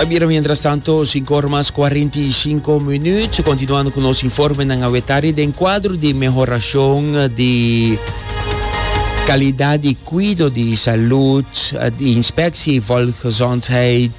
A bira mientras tanto, 5 ora mas 45 minuut, continuando cu nos informe nan a wetari den cuadro di mehoracion di calidad di cuido di salud di Inspectie Volksgezondheid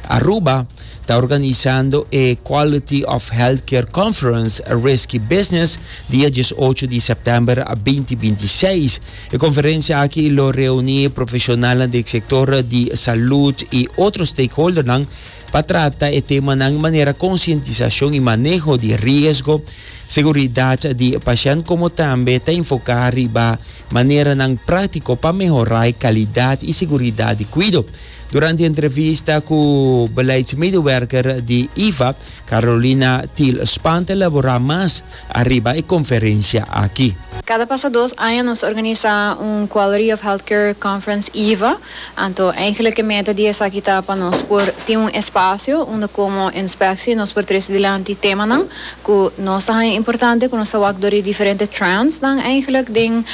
Aruba ta organisando e Quality of Healthcare Conference Risky Business dia diesocho di september a binti binti seis. E conferencia aki lo reuni profesionalnan di e sector di salud y otro stakeholdernan pa trata e temanan manera concientisacion y maneho di riesgo, seguridad di pashent como tambe ta enfoca riba maneranan practico pa mehora e calidad y seguridad di cuido. Durante e entrevista cu beleidsmedewerker di IFA, Carolina Thiel Spaan ta elaborá mas ariba e konferensia aki. Kada pasa dos aña nos ta organisa un Quality of Healthcare Conference, iva. Anto eigenlik e meta di esaki ta pa nos por tin un espasio unda komo Inspectie nos por trese dilanti temanan ku nos ta haña importante, ku nos ta wak dor di diferente trendsnan eigenlik den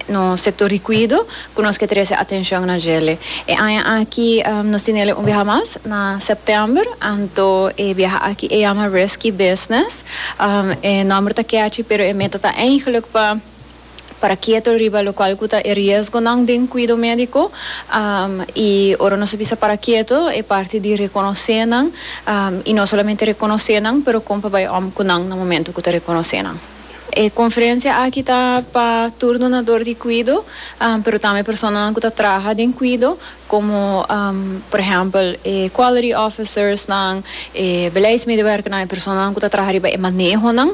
nos sektor di kuido. ku nos ke trese atenshon na djele. E aña aki nos tinele un biaha mas, na sèptèmber, anto e biaha aki e yama Risky Business. E nòmber ta kèchi pero e meta ta eihglik pa para keto riba lokual ku ta e riesgonan den kuido médiko. I ora nos a bisa para keto e parti di rekonosé nan, i no solamente rekonosé nan pero kon pa bai òm ku nan na momentu ku ta rekonosé nan. E conferencia aki ta pa tur donador di cuido, pero tambe personanan cu ta traha den cuido, como por ehempel e quality officersnan, e beleidsmedewerkernan, e personanan cu ta traha riba e manehonan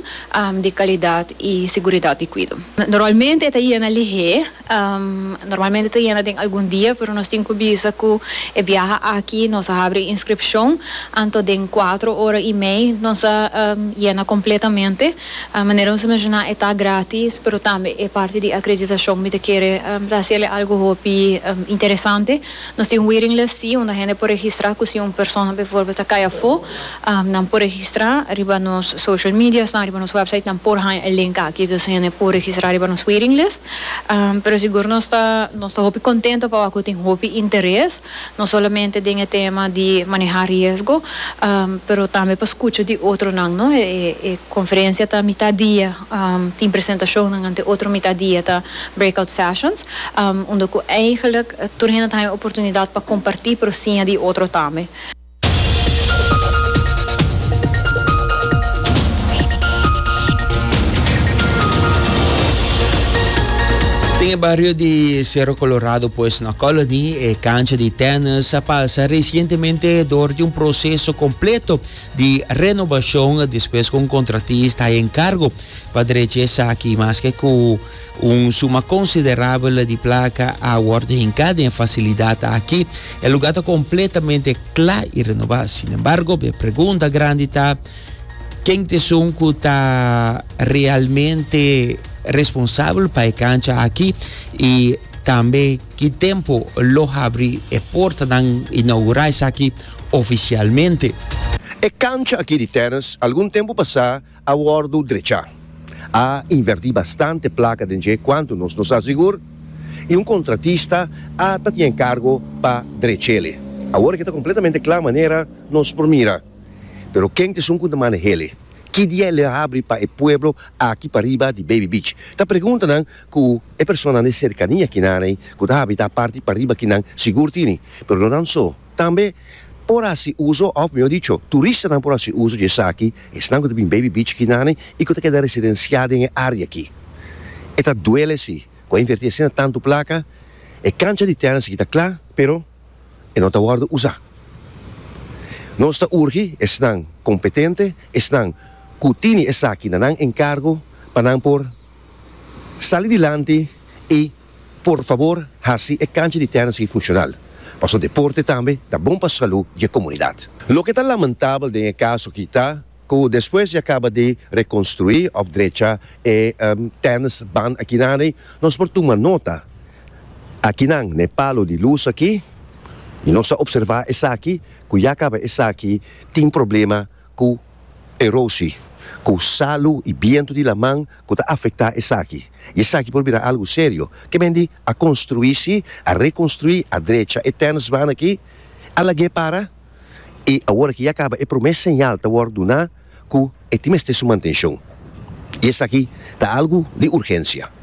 di calidad y seguridad di cuido. Normalmente e ta yena lihé. Normalmente ta yena den algun dia, pero nos tin cu bisa cu e biaha aki nos a habri e inscripcion, anto den cuatro ora y mei nos a yena completamente. Manera nos a menciona e ta gratis, pero tambe e parti di acreditacion mi ta kere ta haci el e algo hopi interesante. Nos tin un waiting list si, unda hende por registra cu si un persona bijvoorbeeld ta cay afo, nan por registra riba nos social media's nan, riba nos website's nan por haña e link aki, dus hende por registra riba nos waiting list. Pero sigur nos ta nos ta hopi contento pa wak cu tin hopi interes, no solamente den e tema di maneha riesgo, pero tambe pa scucha di otronan, no. E e conferencia ta mitad dia, tin presentacionnan, anto e otro mitad dia ta breakout sessions, unda cu eigenlijk tur hende ta haña oportunidad pa comparti, pero siña di otro tambe. Den e bario di Cerro Colorado pues na Colony e cancha di tennis a pasa recientemente door di un proceso completo di renovacion despues cu un contratista a encargo pa drecha esaki, maske cu Un suma konsiderabel di plaka a wòrdu hinká den e fasilidat aki. E lugá ta kompletamente kla i renobá. Sinembargo, e pregunta grandi ta, Ken ta esun ku ta realmente responsabel pa e kancha aki? I tambe ki tempu lo habri e portanan, inaugurá esaki ofisialmente? E kancha aki di tèrrens algun tempu pasá A wòrdu drechá. A invertí bastante plaka den dje kuantu nos no sa sigur, i un kontratista a ta tin enkargo pa drech'ele. Awor ke ta kompletamente kla manera nos por mira. Pero ken ta esun ku ta maneh'ele? Ki dia e lo habri pa e pueblo aki pariba di Baby Beach? Ta preguntanan ku e personanan di serkania kinan'e ku ta habitá parti pariba kinan sigur tini, pero no nan so. Tambe por hasi uso, of mihó dicho, turistanan por hasi uso dje esaki, esnan ku ta bin baby beach akinane i ku ta keda residensiá den e área aki. E ta duele sí, ku a invertí asina tantu plaka, e kancha di tènis aki ta kla, pero e no ta wòrdu usá. Nos ta urgi esnan kompetente, esnan ku tini esaki na nan enkargo pa nan por sali dilanti i. Por fabor hasi e kancha di tèrra sigui funshonal, pasobra deporte tambe ta bon pa salú di e komunidat. Loke ta lamentabel den e kaso aki ta ku despues di a kaba di rekonstruí òf drecha e tèrra's ban akinane nos por tuma nota akinan n'e palu di lus aki i nos a opservá esaki ku ya kaba esaki tin problema ku erosi, ku salu i bientu di laman ku ta afektá esaki, i esaki por bira algu serio. Kemen di a konstruí si, a rekonstruí, a drecha e tèrnsbaan aki, a lag'é para, i awor aki ya kaba e promé señal ta wòrdu duná ku e tin mester su mantenshon. I esaki ta algu di urgensia.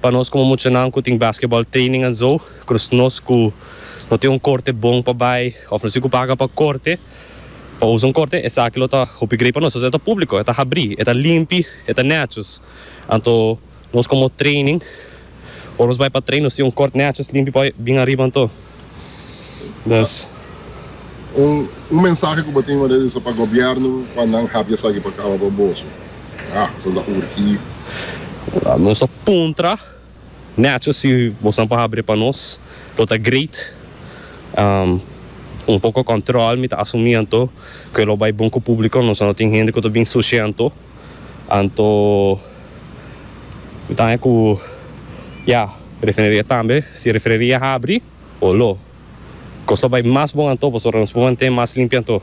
Pa nos como muchanan cu tin basketball training en zo, cruz nos cu no tin un corte bon pa bay of no si cu paga pa corte, pa usa un corte, esaki lo ta hopi grei pa nos. Entonces e ta publico, e ta habri, e ta limpi, e ta nechios. Anto nos como training, ora nos bay pa train, nos tin un cort nechios, limpi pa hoy, bien ariba anto. Dos. Un mensahe ku bo tin wardé usa pa gobièrnu pa nan hap di esaki pa kaba pa boso. Ha, esaki ta urgí. Nos ta puntra nèchos si boso nan por habri pa nos. Lo ta great. Un poko kòntròl mi ta asumí anto ku e lo bai bon ku públiko. Nos a no tin hende ku ta bin sushi anto. Anto. Mi ta haña ku ya, refineria tambe, si refineria habri o lo, kos ta bai mas bon anto, pasobra nos por mantén mas limpi anto.